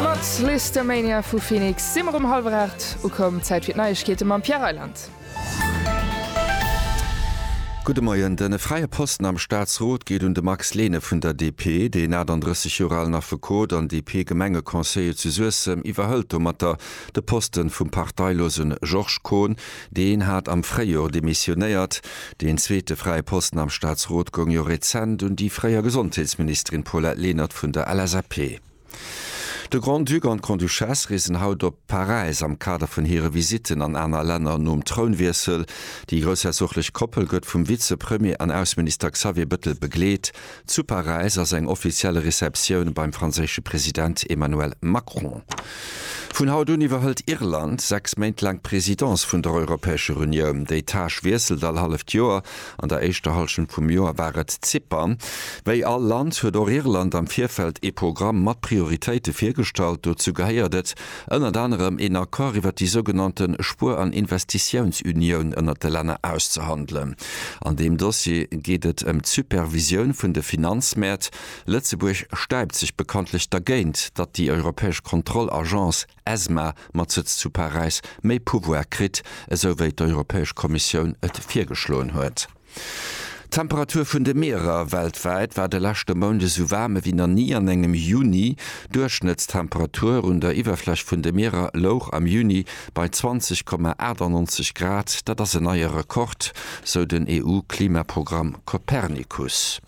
Mat Lisztomania vu Phoenix si mer um hallwer 8 ukomm. Zäit fir d'Neiegkeete mam Pierre Reyland. Gudde Moien. De fräie Posten am Staatsrot geet un de Max Lehne vun der DP. Deen 38 Joer alen Affekot an DP-Gemengeconseiller zu Suessem iwwerhëlt domatter de Poste vum parteilosen Georges Kohn. Deen hat am Fréijor demissionéiert. Deen zweete fräie Posten am Staatsrot goung jo rezent un déi fréier Gesondheetsministerin Paulette Lenert vun der LSAP. De Grand-Duc an d'Grande-Duchesse reesen haut op Paräis am Kader vun hire Visitten an aner Länner nom Trounwiessel. Déi groussherzoglesch Koppel gëtt vum Vize-Premier an Ausseminister Xavier Bëttel begleet. Zu Paräis ass eng offiziell Receptioun beim franséische President Emmanuel Macron. Vun haut un iwwerhëlt Irland sechs Méint laang d'Presidence vun der Europäescher Unioun. Déi Tâche wiesselt all halleft Joer. An der éischter Hallschent vum Joer war et Zypern. Wéi all Land huet och Irland am Virfeld ee Programm mat Prioritéite virgestallt. Dozou gehéiert et, ënnert anerem een Accord iwwert déi sougenannte Spuer an Investitiounsunioun ënnert de Länner auszehandelen. An deem Dossier geet et ëm d'Supervisioun vun de Finanzmäert. Lëtzebuerg stäipt sech bekanntlech dergéint, datt déi europäesch Kontrollagence ESMA mat Sëtz zu Paräis méi Pouvoire kritt, esou wéi d'Europäesch Kommissioun et virgeschloen huet. D'Temperatur vun de Mierer weltwäit war de leschte Mount esou waarm ewéi nach ni an engem Juni. D'Duerchschnëttstemperatur un der Iwwerfläch vun de Mierer louch am Juni bei 20,98 Grad. Dat ass en neie Rekord, sou den EU-Klimaprogramm Copernicus.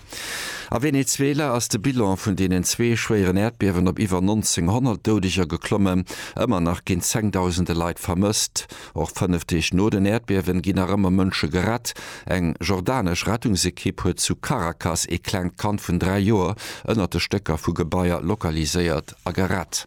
A Venezuela ass de Bilan vun deenen zwee schwéieren Äerdbiewen op iwwer 1900 Doudeger geklommen. Ëmmer nach ginn zengdausende Leit vermësst. Och fënnef Deeg no den Äerdbiewen ginn nach ëmmer Mënsche gerett. Eng jordanesch Rettungsekipp huet zu Caracas ee klengt Kand vun dräi Joer ënnert de Stécker vu Gebaier lokaliséiert a gerett.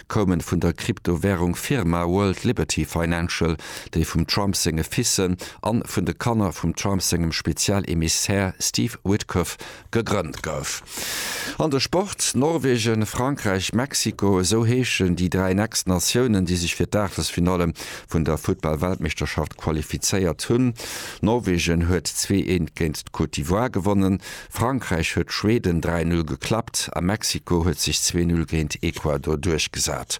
koumen vun der Kryptowärung Firma World Liberty Financial, déi vum Trump senge Fissen an vun de Kanner vum Trump sengem Spezial Emissär Steve Witkoff gegrënnt gouf. An de Sport, Norwegen, Frankräich, Mexiko, esou heeschen déi 3 next Natiounen, déi sech fir d'Aachtelsfinalle vun der Futtball-Weltmeeschterschaft qualifizéiert hunn. Norwegen huet 2 Eent géint d'Côte d'Ivoire gewonnen. Frankräich huet Schweden 3-0 geklappt a Mexiko huet sech 2-0 géint Ecuador duerchgesat.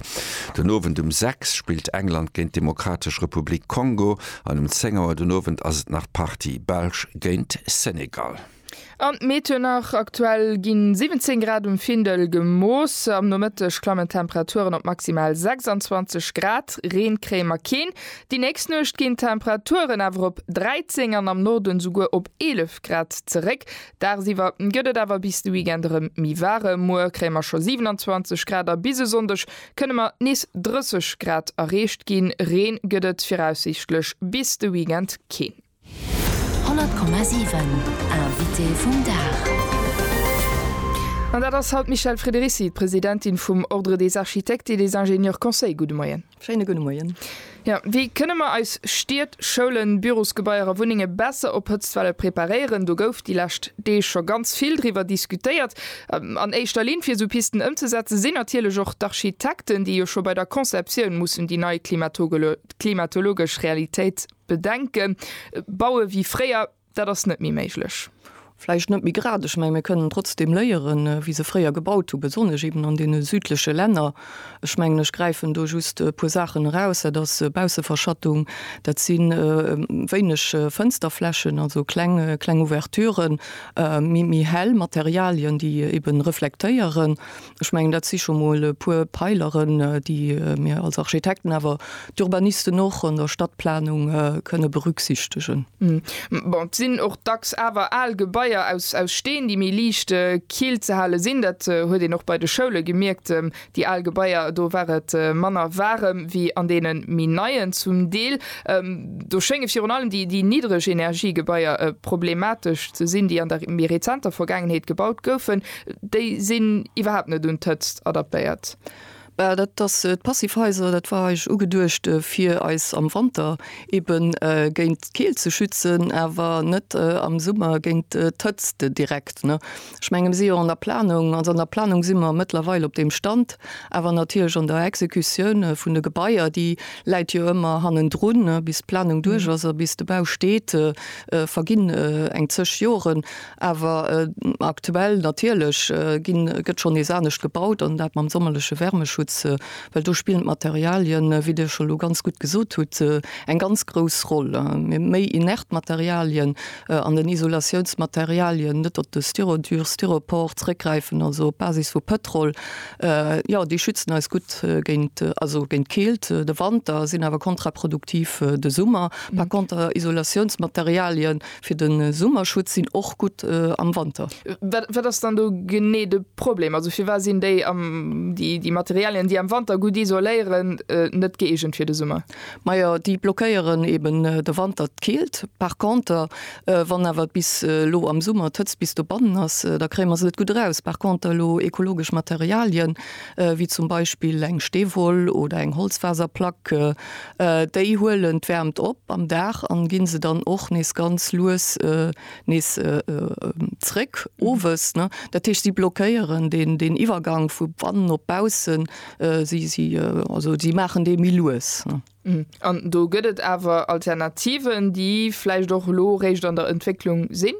Den Owend um 6 spillt England géint d'Demokratesch Republik Kongo an um 10 Auer den Owend ass et nach Partie Belsch géint Senegal. An d'Meet huet nach, Aktuell gi 17 Grad um Findel gemooss. Am Nomëtteg klammen d'Temperaturen op maximal 26 Grad, Reen kréie mer keen. Déi nächst Nuecht ginn d'Temperaturen awer op 13 an am Norden souguer op 11 Grad zeréck. Dagsiwwer gëtt et awer bis de Weekend erëm méi waarem. Muer kréie mer scho 27 Grad a bis e Sonndeg kënne mer nees 30 Grad erreecht ginn. Reen gëtt et viraussiichtlech bis de Weekend keen. 100,7 Invité vum Dag An dat ass haut d'Michèle Frederici, d'Presidentin vum Ordre des Architectes et des Ingénieurs Conseils. Gudde Moien. Schéine gudde Moien. Jo, wéi kënne mer eis Stied, Schoulen, Bürosgebaier a Wunnenge besser op Hëtztwelle preparéieren? Do gouf déi lescht Deeg scho ganz vill driwwer diskutéiert. An éischter Linn, fir esou Pisten ëmzesetzen, sinn natierlech och d'Architekten, déi jo scho bei der Conceptioun mussen déi nei klimatologesch Realitéit, Bedenken, Baue wéi fréier, dat ass net méi méiglech. Vläicht net méi grad, ech menge mir kënnen trotzdeem léieren, wéi se fréier gebaut hu, besonnesch eben an deene südleche Länner. Ech mengen, ech gräifen do just e puer Saachen eraus, dat ass Bausseverschattung, dat si wéineg Fënsterflächen, also kleng, kleng Ouverturen, méi, méi hell Materialien, déi eben reflektéieren. Ech mengen, dat si scho mol e puer Peileren, déi mir als Architekten, awer d'Urbanisten och, an der Stadtplanung kënne berücksichtegen. Bon, et sinn och dacks awer al Gebaier aus Steen, déi méi liicht kill ze hale sinn. Dat huet een och bei de Schoule gemierkt. Déi al Gebaier, do war et manner waarem wéi an deene méi neien zum Deel. Do schénge virun allem déi Niddregenergiegebaier problematesch ze sinn, déi an der méi rezenter Vergaangenheet gebaut goufen. Déi sinn iwwerhaapt net un d'Hëtzt adaptéiert. Well dat ass d'Passivhaiser, dat war eigentlech ugeduecht fir eis am Wanter eben géint d'Keelt ze schützen, awer net am Summer géint d'Hëtzt direkt, ne. Ech menge mir si jo an der Planung, also an der Planung si mer mëttlerweil op deem Stand, awer natierlech an der Exekutioun vun de Gebaier, déi läit jo ëmmer hannendrun, ne. Bis d'Planung duerch ass a bis de Bau steet, verginn eng zeg Joren. Awer aktuell natierlech ginn, gëtt schonn nees anescht gebaut an dat mam sommerleche Wärmeschutz, well do spillen d'Materialien, wéi Dir scho elo ganz gutt gesot hutt, eng ganz grouss Roll. Méi inert Materialien an den Isolatiounsmaterialien, net op de Styrodur, Styropor zréckgräifen, also op Basis vu Pëtrol, jo, déi schützen eis gutt géint, also géint d'Keelt de Wanter, sinn awer kontraproduktiv de Summer. Par contre Isolatiounsmaterialien, Fir den Summerschutz sinn och gutt am Wanter. Wat ass dann do genee de Problem? Also firwat sinn déi déi Materialien déi am Wanter gutt isoléieren net gëeegent fir de Summer? Majo déi blockéieren eben de Wanter d'Keelt. Par conter wann awer bis elo am Summer d'Hëtzt bis dobannen ass, da kréie mer se net gutt eraus. Par conter elo ekologesch Materialien wéi zum Beispill eng Steewoll oder eng Holzfaserplack Déi huelen d'Wäermt op am Dag an ginn se dann och nees ganz lues nees zréck owes. Dat heescht si blockéieren deen Iwwergang vu bannen op baussen, also si maachen dee méi lues. An do gëtt et awer Alternativen, déi vläicht och elo eréischt an der Entwécklung sinn?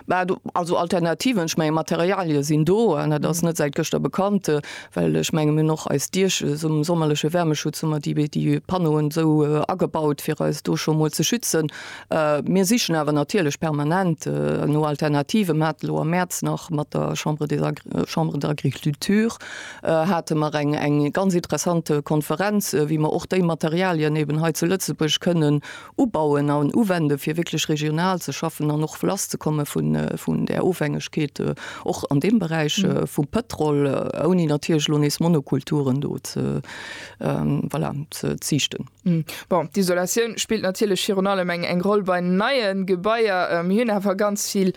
Bah, do, also Alternativen, ech mengen, Materialien sinn do an dat ass net säit gëschter bekannt, well ech mengen, mir hunn och eis Diech, sum sommerleche Wärmeschutz hu mer déi, déi Panneauen esou agebaut, fir eis do scho mol ze schützen. Mir sichen awer natierlech permanent no Alternativen. Mir haten elo am Mäerz nach mat der Chambre des Agri, Chambre d'agriculture hate mer eng, eng ganz interessant Konferenz, wéi mer och déi Materialien eben hei zu Lëtzebuerg kënnen Ubauen an uwende fir wierklech regional ze schaffen an och lass ze komme vun där Ofhängegkeet och an deem Beräich vum Pëtrol, ouni natierlech elo nees Monokulturen do ze, voilà, ze ziichten. Bon, d'Isolatioun spillt natierlech virun allem eng Roll bei neie Gebaier. Mir hunn awer ganz vill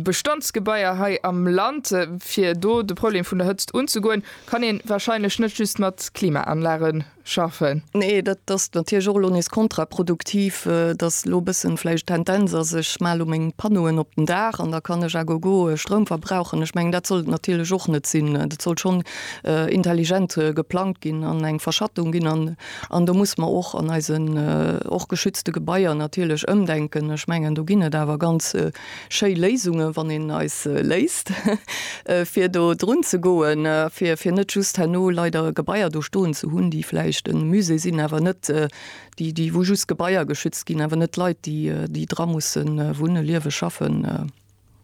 Bestandsgebaier hei am Land. Fir do de Problem vun der Hëtzt unzegoen, kann ee warscheinlech net just mat Klimaanlage schaffen. Nee, dat ass natierlech och elo nees kontraproduktiv, datt elo e bëssen vläicht d'Tendenz ass, ech male elo meng Panneauen op den Daach an da kann ech à gogo Stroum verbrauchen. Ech mengen, dat soll et natierlech och net sinn. Dat soll schonn intelligent geplangt ginn an eng Verschattung ginn an an do muss mer och an eisen och geschützte Gebaier natierlech ëmdenken. Ech mengen, do ginn et awer ganz Schéi Léisunge wann een eis léisst fir do drun ze goen, fir fir net just herno leider Gebaier do stoen ze hunn, déi vläicht e Musée sinn, awer net déi déi wou just Gebaier geschützt ginn, awer net Leit déi déi dra musse wunne, liewe, schaffen.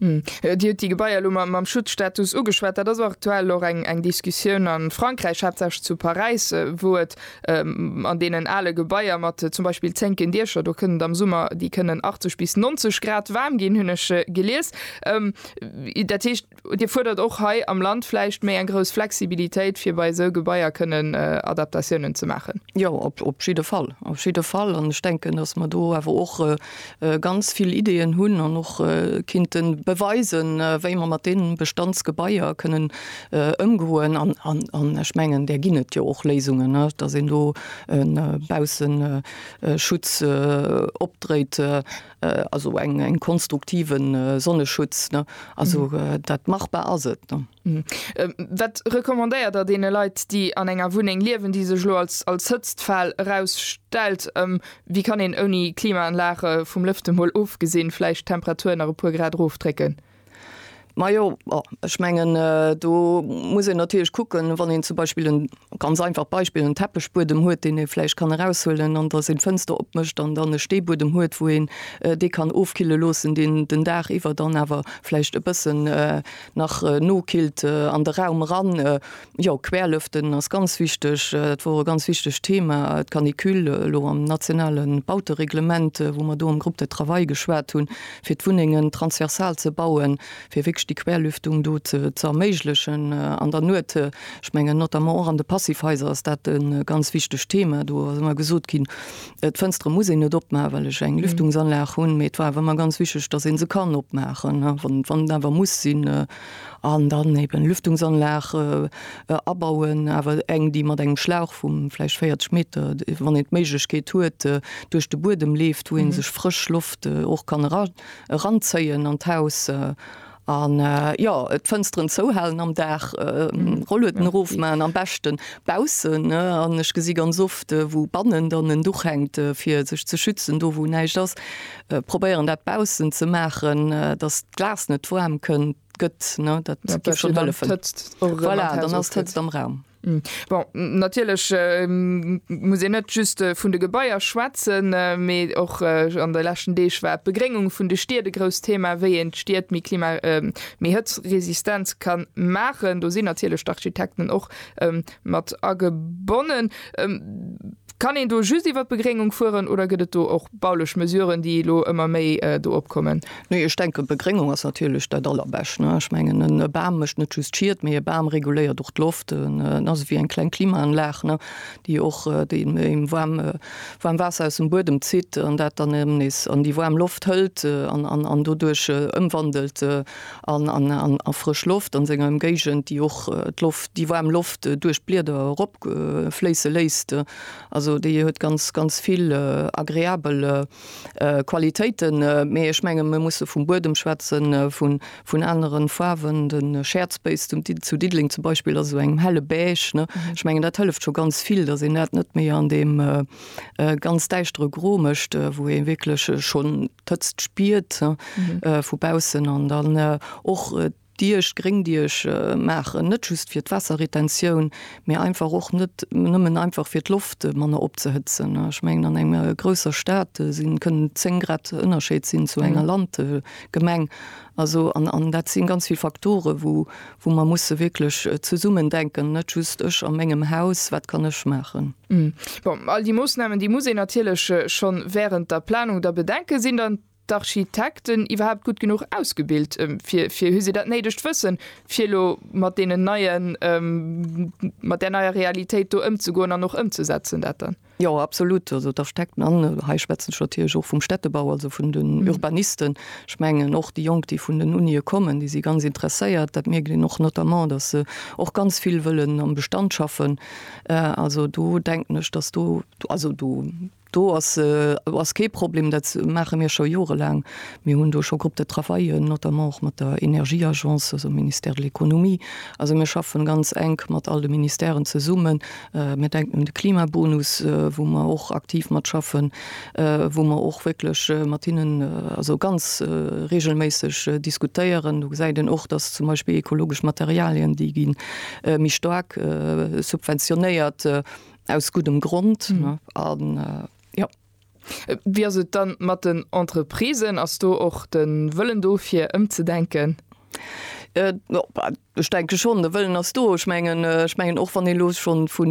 Dir hutt déi Gebaier elo mam Schutzstatus ugeschwat. Dat ass aktuell och eng eng Diskussioun a Frankräich, haaptsächlech zu Paräis, wou et An deenen ale Gebaier mat zum Beispill zénken Diescher, do kënnt et am Summer, déi kënnen 80 bis 90 Grad waarm ginn, hunn ech gelies. Dat heescht, Dir fuerdert och hei am Land vläicht méi eng grouss Flexibilitéit, fir bei esou Gebaier kënnen Adaptatiounen ze maachen? Jo, op jidde Fall, op jidde Fall. An ech denken, datt mer do awer och, ganz vill Ideeën hunn an och kinnte beweisen, wéi mer mat deene Bestandsgebaier kënnen ëmgoen. An ech mengen, där ginn et jo och Léisungen, dass een do e Bausseschutz opdréit, also eng konstruktiven Sonneschutz. Also dat machbar ass et. Wat recommandéiert der deene Leit, déi an enger Wunneng liewen, déi sech elo als als Hëtztfal erausstellt? Wéi kann een ouni Klimaanlag, vum Lëfte mol ofgesinn, vläicht d'Temperatur nach e puer Grad erofdrécken? Majo, ech mengen do muss een natierlech kucken, wann een zum Beispill en, ganz einfacht Beispill, en Teppechbuedem huet, deen ee vläicht kann eraushuelen an datt een d'Fënster opmécht an dann e Steebuedem huet, wou een dee kann ofkille loossen, deen den Dag iwwer dann awer vläicht e bëssen, nach nokillt an de Raum eran. Jo, querlëften ass ganz wichteg. Dat wor e ganz wichtegt Thema, d'Canicule elo am nationale Bautereglement, wou mer do am Groupe de travail geschwat hunn, fir d'Wunnengen transversal ze bauen, fir wierklech déi Querlüftung do ze erméiglechen an der Nuet. Ech mengen, notamment och an de Passivhaiser ass dat e ganz wichtegt Thema. Do ass ëmmer gesot ginn, Äh, d'Fënstere muss een net opmachen, well ech eng mhm. Lüftungsanlag hunn, mee et war awer ëmmer ganz wichtig, dass een se kann opmachen, ne? wann wann awer muss sinn äh, an dann eben Lüftungsanlag äh, äh, abauen, awer eng déi mat engem Schlauch vum vläicht 40 Meter, wann et d'Méiglechkeet huet äh, duerch de Buedem leeft, wou een mhm. sech frësch Loft äh, och kann eran eranzéien an d'Haus. Äh, An jo, d'Fënsteren zouhalen am Dag, Rollueten erofman, am beschten baussen, an ech gesi ganz oft wou bannen dann en Duch hänkt fir sech ze schützen, do wou näischt ass probéieren dat baussen ze maachen, dass d'Glas net waarm kënnt gëtt, dat géif schonn hëllefen, voilà, dann ass d'Hëtzt am Raum. Bon, natierlech muss een net just vun de Gebaier schwätzen, mee och an de leschten Deeg war d'Begréngung vun de Stied e grousst Thema, wéi een d'Stied méi klima-, méi hëtzresistent ka maachen. Do sinn natierlech d'Architekten och mat agebonnen. Kann een do just iwwert d'Begréngung fueren oder gëtt et do och baulech Mesuren, déi elo ëmmer méi do opkommen? Nee, ech denken, d'Begréngung ass natierlech dat Allerbescht. Ech mengen, e Bam mécht net just Schied, mee e Bam reguléiert och d'Loft. En ass ewéi eng kleng Klimaanlag, déi och deem waarm Waasser aus dem Buedem zitt an dat dann erëm nees an déi waarm Loft hëlt an doduerch ëmwandelt a frësch Loft an senger Ëmgéigend, déi och d'Loft, déi waarm Loft duerch d'Blieder erop. fléisse léisst. Also déi huet ganz, ganz vill agreabel Qualitéiten. Mee ech menge mir musse vum Buedem schwätzen, vun aneren Faarwen. De Schäerzbéis zu Diddeleng zum Beispill ass esou engem helle Beige. Ech mengen dat hëlleft scho ganz vill, datt een dat net méi an deem ganz däischtere Gro mécht, wou ee wierklech schonn d'Hëtzt spiert vu baussen. An dann och. Diech, Gréngdiech, maachen, net just fir d'Waasserretentioun, mee einfach och net nëmmen einfach fir d'Loft manner opzehëtzen. Ech mengen an enger grousser Stad si kënnen 10 Grad Ënnerscheed sinn zu enger Landgemeng. Also an an dat si ganz vill Faktore wou wou mer musse wierklech zesummen denken, net just ech a mengem Haus, wat kann ech maachen. Bon, all déi Moossnamen déi muss een natierlech schonn wärend der Planung da bedenken. Sinn dann. d'Architekten iwwerhaapt gutt genuch ausgebilt fir, fir hu se dat néidegt Wëssen, fir elo mat deenen neien, mat där neier Realitéit do ëmzegoen an och ëmzesetzen dat dann? Jo, absolutt. Also d'Architekten, an hei schwätzen ech natierlech och vum Städtebau, also vun den Urbanisten, ech mengen och déi Jonk, déi vun den Unië kommen, déi si ganz interesséiert. Dat mierkt een och notamment, datt se och ganz vill wëllen am Bestand schaffen. Also do denken ech, datt do, also do Do ass ass kee Problem, dat maache mir scho jorelaang. Mir hunn do scho Groupes de travail, notamment och mat der Energieagence, also dem Ministère de l'Economie. Also mir schaffen ganz enk mat all de Ministèren zesummen. Mir denken un de Klimabonus, wou mer och aktiv mat schaffen, wou mer och wierklech mat hinnen also ganz reegelméisseg diskutéieren. Do gesäit een och, datt zum Beispill ekologesch Materialien, déi gi méi staark subventionéiert. Aus guddem Grond an jo. Wéi ass et dann mat den Entreprisen? Ass do och de Wëllen do fir ëmzedenken? Ech denke schonn, de Wëllen ass do. Ech mengen, ech mengen och wann ee lo schonn vu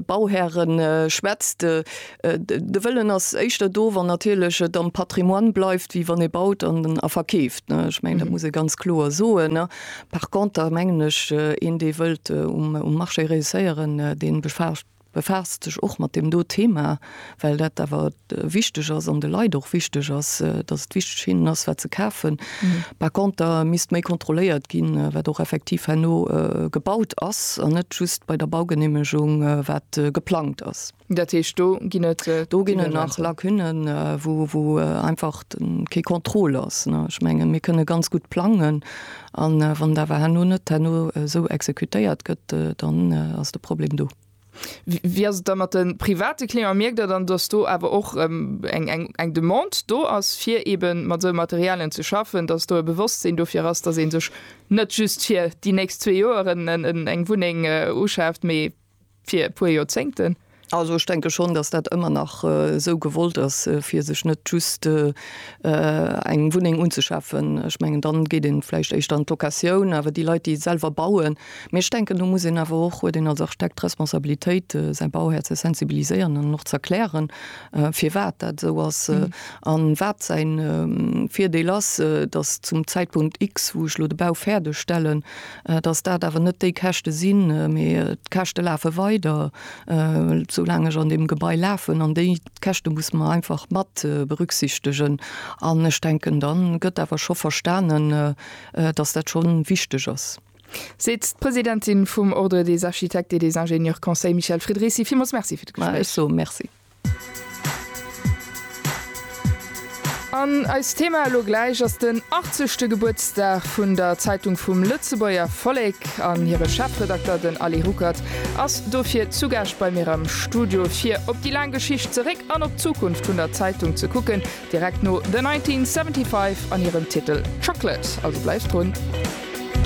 Bauhäre schwätzt, De Wëllen ass éischter do, wann natierlech et am Patrimoine bleift, wéi wann ee baut a verkeeft. Ech mengen, dat muss ee ganz kloer soen. Par conter mengen ech, een, dee wëllt um Marché reusséieren, dee befaasst sech och mat deem do Thema, well dat awer wichteg ass an de Leit och wichteg ass, datt et wichteg hinnen ass, wat se kafen. Par conter misst méi kontrolléiert ginn, wat och effektiv herno gebaut ass an net just bei der Baugeneemegung, wat geplangt ass. Dat heescht, do ginn et nach Lacunnen, wou einfach kee Contrôle ass. Ech mengen, mir kënne ganz gutt plangen an wann et awer herno net herno esou exekutéiert gëtt, dann ass de Problem do. Wéi ass et da mat de private Clienten? Mierkt Der dann, dass do awer och eng Demande do ass, fir eeben mat esou Materialien ze schaffen, dass do e Bewosstsinn dofir ass, dass ee sech net just fir déi nächst zwee Joer eng Wunneng uschaaft, mee Fir e puer Joerzéngten. Also ech denke schonn, dass dat ëmmer nach esou gewollt ass, fir sech net just eng Wunneng unzeschafen. Ech mengen, dann geet ee vläicht éischter an d'Locatioun. Awer déi Leit, déi selwer bauen, mee ech denken, do muss een awer och, huet een als Architekt d'Responsabilitéit, säi Bauhär ze sensibiliséieren an en och ze erklären, firwat dat esou ass a wat säin Virdeel ass, dass zum Zäitpunkt X, wou ech elo de Bau fäerdegstellen, dass dat awer net déi Käschte sinn, mee d'Käschte lafe weider, esou laang ech an deem Gebai lafen, an déi Käschte musse mer einfach mat berücksichtegen. An ech denken, da gëtt awer scho verstanen, dass dat scho wichteg ass. Seet d'Presidentin vum Ordre des architectes et des ingénieurs Conseil, Michèle Fridrizi. Villmools Merci fir d'Gespréich. Mä ech soe Merci. An eist Thema elo gläich ass den 80. Gebuertsdag vun der Zeitung vum Lëtzebuerger Vollek. An hire Chefredakter, den Aly Ruckert, ass dofir zu Gaascht bei mir am Studio, fir op déi laang Geschicht zeréck an op d'Zukunft vun der Zeitung ze kucken, direkt no The 1975 an hirem Titel Chocolate. Also bleift drun.